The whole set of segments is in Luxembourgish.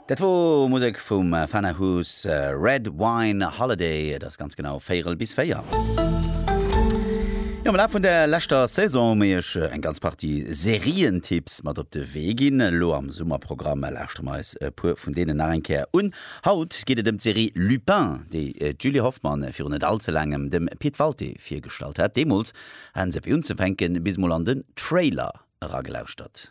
Dat wor Musek vum Fana Huss, Red Wine Holiday, et ass ganz genau véierel bis véier. Jo, am Laf vun der leschter Saison hu mir iech eng ganz Partie Serientipps mat op de Wee ginn. Elo am Summerprogramm lauschtere mer eis e puer vun deenen nach eng Kéier un. Haut geet et ëm d'Serie Lupin, déi d'Julie Hoffmann virun net all ze laangem dem Pit Walté virgestallt hat. Deemools haten se fir unzefänken bis emol an den Trailer eragelauschtert.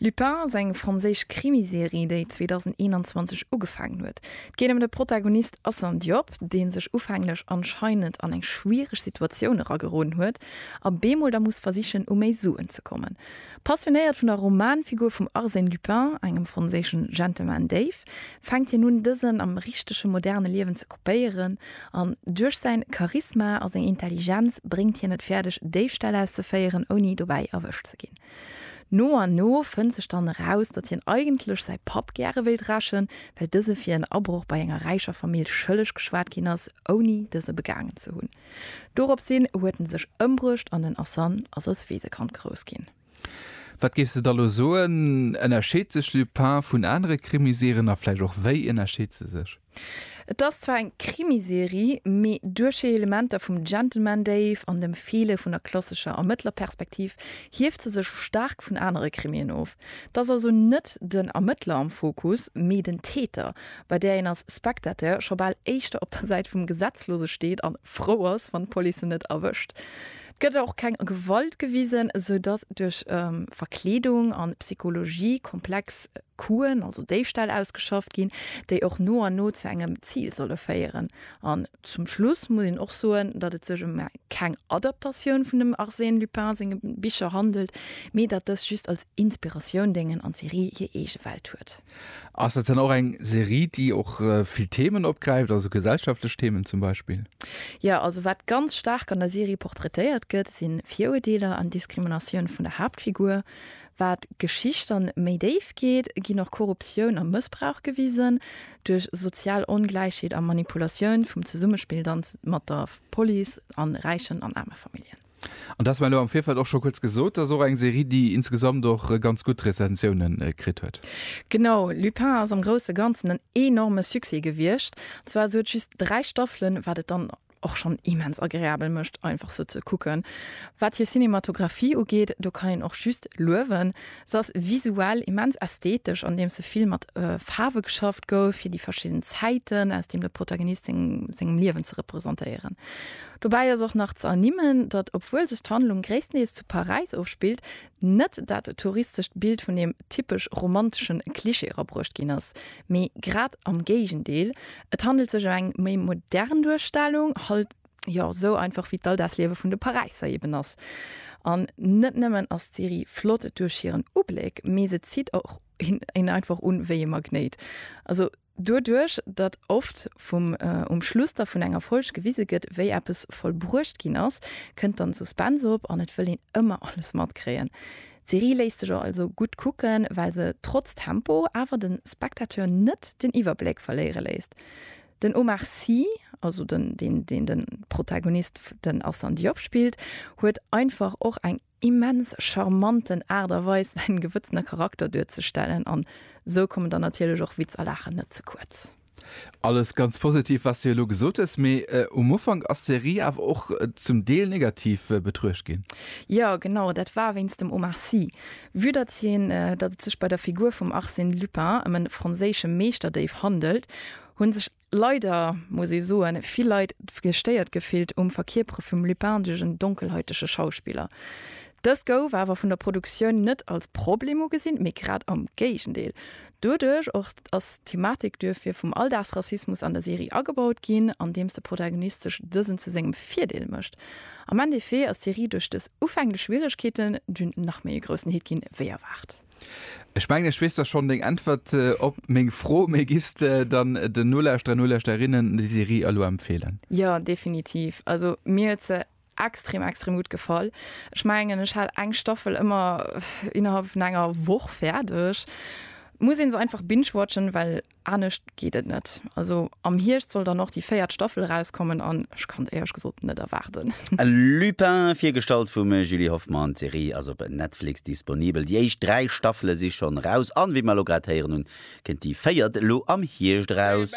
Lupin ass eng franséisch Krimiserie, déi 2021 ugefaangen huet. Et geet ëm de Protagonist Assane Diop, dee sech ufänglech anscheinend an eng schwiereg Situatioun erageroden huet a bemol da muss versichen, u méi Suen ze kommen. Passionéiert vun der Romanfigur vum Arsène Lupin, engem franséischen Gentleman-Déif, fänkt hien un, dësen am richtege moderne Liewen ze kopéieren an duerch säin Charisma a seng Intelligenz bréngt hien et fäerdeg, Déifställ auszeféieren, ouni dobäi erwëscht ze ginn. No an no fënnt sech dann eraus, datt hien eigentlech säi Papp gäre wéilt rächen, well dëse fir en Abroch bei enger räicher Famill schëlleg geschwat ginn ass, ouni dëse begaangen ze hunn. Dorops hin huet en sech ëmbruecht an den Asan ass als Weesekand grouss ginn. Wat géifs de da lo soen, ënnerscheet sech Lupin vun anere Krimiserien a vläicht och wéi ënnerscheet se sech? Et ass zwar eng Krimiserie, mee duerchhi Elementer vum Gentleman Dave an dem Feele vun der klassescher Ermëttlerperspektiv hieft se sech staark vun anere Krimien of. Et ass also net den Ermëttler am Fokus, mee den Täter, bei där een als Spectateur scho bal éischter op der Säit vum Gesetzlose steet an frou ass, wann d'Police en net erwëscht. Et gëtt och keng Gewalt gewisen, sou datt duerch Verkleedung an Psychologie komplex. Coup'en, also Déifställ, ausgeschafft ginn, déi och no an no zu engem Zil solle féieren. An zum Schluss muss een och soen, datt et sech ëm keng Adaptatioun vun dem Arsène Lupin senge Bicher handelt, mee datt dës just als Inspiratioun déngen an d'Serie hir eege Welt huet. Ass dat dann och eng Serie, déi och vill Themen opgräift, also gesellschaftlech Themen zum Beispill? Jo, also wat ganz staark an der Serie portraitéiert gëtt, si Viruerdeeler an Diskriminatioun vun der Haaptfigur. Wat d'Geschicht dann méi déif geet, ginn och Korruptioun a Mëssbrauch gewisen. Duerch sozial Ongläichheet a Manipulatioun vum Zesummespill dann mat der Police an räichen an aarme Familljen. An dass mer elo am Virfeld och scho kuerz gesot, dass och eng Serie déi insgesamt och ganz gutt Rezensiounen kritt huet. Genau, Lupin ass am grousse Ganzen en enorme Succès gewiescht. Zwar sou et just 3 Staffelen, wat et dann och schonn immens agreabel mécht, einfach se ze kucken. Wat hir Cinematographie ugeet, do kann een och just luewen. Se ass visuell immens ästhetesch, andeems se vill mat Faarwe geschafft gouf, fir déi verschidden Zäiten, aus deem de Protagonist seng sengem Liewen ze representéieren. Dobäi ass och nach ze ernimmen, datt, obwuel sech d'Handlung gréisstendeels zu Paräis ofspillt, Net dat touristescht Bild vun deem typesch romantesche Klischee erabruecht ginn ass, mee grad am Géigendeel, et handelt sech ëm eng méi modern Duerstellung, halt jo sou einfach wéi d'Alldagsliewe vun de Paräisser eben ass. An net nëmmen ass d'Serie flott duerch hiren Ubléck, mee se zitt och een einfach un wéi ee Magnéit. Also. Doduerch, datt oft vum um Schluss da vun enger Folg gewise gëtt, wéi eppes vollbruecht ginn ass, kënnt dann Suspense op an et wëll een ëmmer alles matkréien. D'Serie léisst sech also gutt kucken, well se trotz Tempo awer de Spectateur net den Iwwerbléck verléiere léisst. Den Omar Sy, also den deen den Protagonist den Assane Diop spillt, huet einfach och eng immens charmanten Aart a Weis säin gewëtzene Charakter duerzestellen an sou kommen dann natierlech och Witz a Laachen net ze kuerz. Alles ganz positiv wat s de elo gesot hues, mee um Ufank ass d'Serie awer och zum Deel negativ betruecht ginn. Jo genau, dat war wéinst dem Omar Sy. Vue datt hien datt et sech bei der Figur vum Arsène Lupin ëm e franséische Meeschterdéif handelt, hunn sech Leider muss ee soen, vill Leit gestéiert gefillt um Verkierpere vum lupindegen, donkelhäutege Schauspiller. Dëst gouf awer vun der Produktioun net als Problem ugesinn, mee grad am Géigendeel. Doduerch och ass d'Thematik duerfir vum Alldagsrassismus an der Serie agebaut ginn, andeems de Protagonist sech dësen zu sengem Virdeel mécht. Am Endeffet ass d'Serie duerch dës ufänglech Schwieregkeeten dunn nach méi e groussen Hit ginn, wéi erwaart. Ech mengen ech weess da schonn deng Äntwert op meng Fro, mee giffs de dann den Nolauschterer, Nolauschterinnen déi Serie elo empfeelen? Jo, definitiv. Also mir huet se extrem, extrem gutt gefall. Ech mengen ech hat eng Staffel ëmmer innerhalb vun enger Woch fäerdeg. Muss ee se einfach binge-watchen, well Anescht geet et net. Also am Hierscht soll dann och déi véiert Staffel erauskommen an ech kann et éierlech gesot net erwaarden. Lupin, virgestallt vum Julie Hoffmann. D'Serie ass op Netflix disponibel. Déi éischt dräi Staffele si schonn eraus an wéi mer elo grad héieren hunn, kënnt déi véiert elo am Hierscht eraus.